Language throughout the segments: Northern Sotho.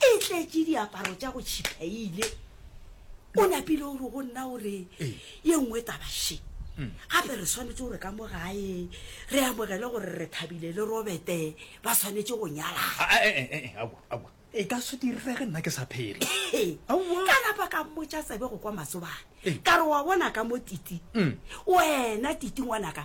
e tletše diaparo tša go tšhiphaile o napile o re go nna o re ye nngwe tabaše mm. gape re swanetse gore ka mo gae re amogele gore re thabile le robete ba swanetse go nyalaa ah, eh, eh, eh, e ka se direge nna ke sa phele ka napa ka mmotsa tsebe go kwa masobane ka re wa bona ka mo titi mm. wena titi ngwanaka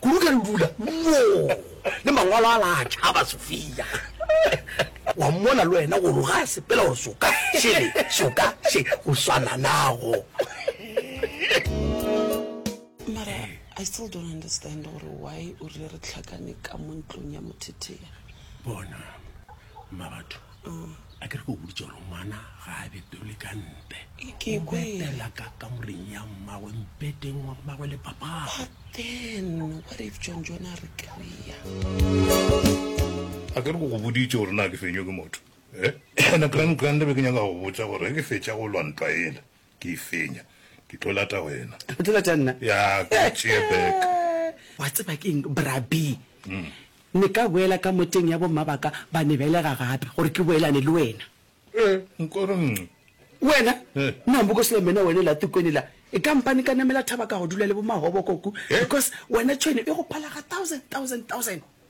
Kudu ka dibula wo le mangwalo a la tšhaba Sofia. Wa mmona le wena gore ga a sepela gore soka šele soka še go swana nago. Mara I still don't understand gore why o rile re tlhakane ka mo ntlong ya mothetheya. Bona. mma batho mm. a ke re ke o boditse gore ngwana ga a betole ka nte obetela ka kamoreng ya mmagwe mpeteng wa mmagwe le papaen wa re john john a re kry-a a ke re ko go boditse gore na ke fenywe ke motho eh? ene grand grand be ke nyaka go botsa gore ke fetša go lwantwa ele Ke e fenya. Ke tlo lata wena. O tlo lata nna? Ya, ke o tšee back. Wa tseba ke eng, Bra Bee? Ne ka boela ka moteng ya bomma ba ka, ba ne belega gape, gore ke boelane le wena. Ee, nko re nngwe. Wena? Nna Mbokosela Mena wena la Tukweni la, e ka mpane ka namela thaba ka go dula le bo Mahobo ko ku, because wena tšhwene e go phala ga thousand, thousand, thousand.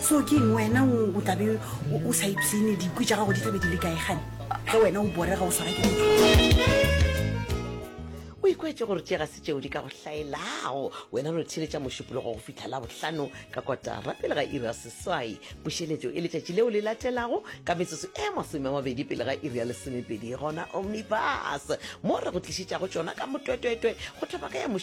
so ke eng wena o tla be o sa ipsene dikwi tša gago di tla be di le kae gane ge wena o borega o swara ke o ikwetse gore tše ga se tšeo di ka go hlaelago wena no theletša mošupologo go fitlha la bohlano ka kotara pele ga iri ya seswai pušeletšo e letšatši leo le latelago ka metsotso e masome a mabedi pele ga iri ya lesomepedi gona omnibus mo re go tlišetšago tšona ka motwetwetwe go thopaka ya mošup